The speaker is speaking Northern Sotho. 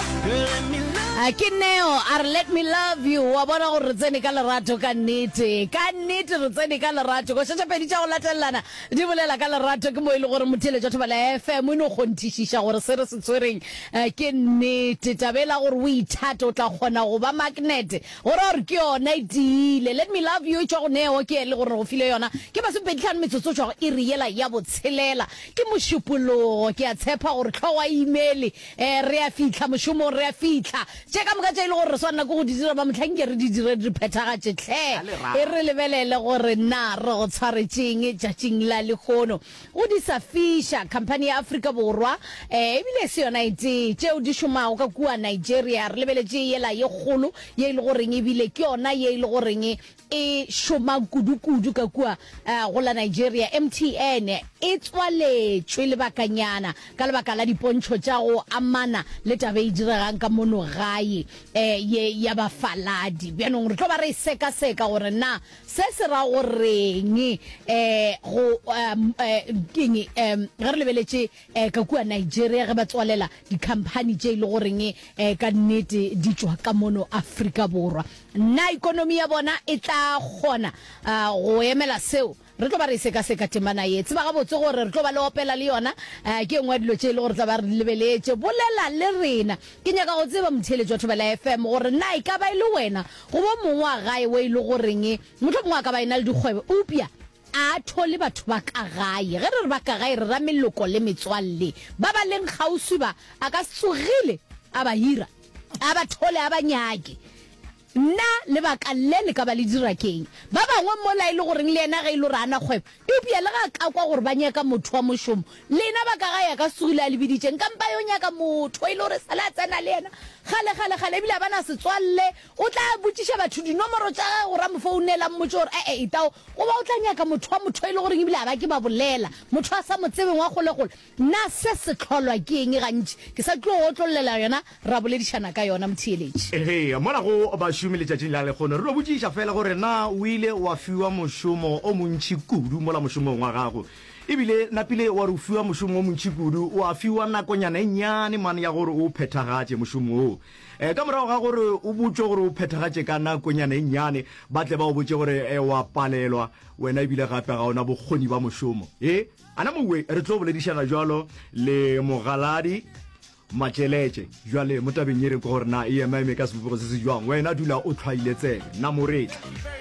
A ke neo a re let me love you wa bona gore re tsene ka lerato ka nnete ka nnete re tsene ka lerato go šetša pedi tša go latelelana di bolela ka lerato ke mo e le gore motheletša thobela fm o no kgonthišiša gore se re se tshwereng eh, ke nnete tabe la gore o ithate o tla kgona go ba magnete gore gore ke yona e tiile let me love you e tšwa go neo ke e le gore go file yona ke masomepeditlhano metsotso o tšwago e re yela ya botshelela ke mošupologo ke a tshepa gore tlhogo a imele Ee, re a fihla mošomong, re a fihla. Tše ka moka tše e le gore re swanela ke go di dira, ba mohla nke re di dire, re di phethagatše. Hle A le ra. e re lebelele gore na re go tshwaretše'ng tšatšing la lehono. Go di sa fiša, khamphani ya Afrika Borwa, ee, e bile e se yona e tee, tšeo di šomago ka kua Nigeria. Re lebeletše yela ye kgolo ye e le goreng e bile ke yona ye e le goreng e šomang kudu-kudu ka kua uh, go la Nigeria, MTN e tswaletšwe lebakanyana ka lebaka la dipontšho tša go amana le tabe e diregang ka mono gae eh, ye ya bafaladi. Bjanong re tlo ba re seka-seka gore na se se ra goreng eh, go um, eh, keng um, ge re lebeletše e ka kua Nigeria ge ba tswalela dikhamphani tše e le goreng e ka nnete di tšwa ka mono Afrika Borwa. Na ikonomi ya bona e tla kgona go emela seo? Re tlo ba re e sekaseka temana ye. Tseba gabotse gore re tlo ba le opela le yona, ke e nngwe ya dilo tše e le gore re tla ba re di lebeletše. Bolela le rena. Ke nyaka go tseba, motheeletši wa Thobela FM, gore na e ka ba e le wena goba o mongwe wa gae wo e le goreng mohlomongwe a ka ba e na le dikgwebo eupša A a thole batho ba ka gae. Ge re re ba ka gae re ra meloko le metswalle ba ba leng kgauswi. Ba a ka se tsogile a ba hira, a ba thole a ba nyake. Na lebaka le le ka ba le dira ke'ng? Ba bangwe mola e le goreng le yena ge e le gore a na kgwebo, eupša le ge a ka kwa gore ba nyaka motho wa mošomo, lena ba ka gae a ka se tsogile a le biditše. Nka mpa yo nyaka motho e le gore e sa le a tsena le yena kgalekgalekgale ebile a ba na setswalle. O tla botšiša batho dinomoro tša gagwe gore a mo founele, a mmotše gore a etao, goba o tla nyaka motho wa motho e le goreng e bile a ba ke ba bolela, motho a sa mo tsebeng wa kgolekgole. Na se se hlolwa ke eng? Gantši ke sa tlo go otlollela yona, ra boledišana ka yona, motheeletši. Ee, mola go bašomi letšatšing la lekgono, re no botšiša feela gore na o ile wa fiwa mošomo o montši kudu mola mošomong wa gago. E bile napile wa re o fiwa mošomo o montši kudu, wa fiwa nakonyana e nnyane mane ya gore o o phethagatše mošomo woo. Ka morago ga gore o botšwe gore o phethagatše ka nakonyana e nnyane, ba tle ba go botše gore o a palelwa wena e bile gape ga o na bokgoni bja mošomo. He, a na mowwe re tlo boledišana bjalo le Mogaladi Matšeletše bjale mo tabeng ye re kwe gore na e ema-eme ka sebopego se se bjang. Wena dula o tlhwaile tsebe. Na mo re tla.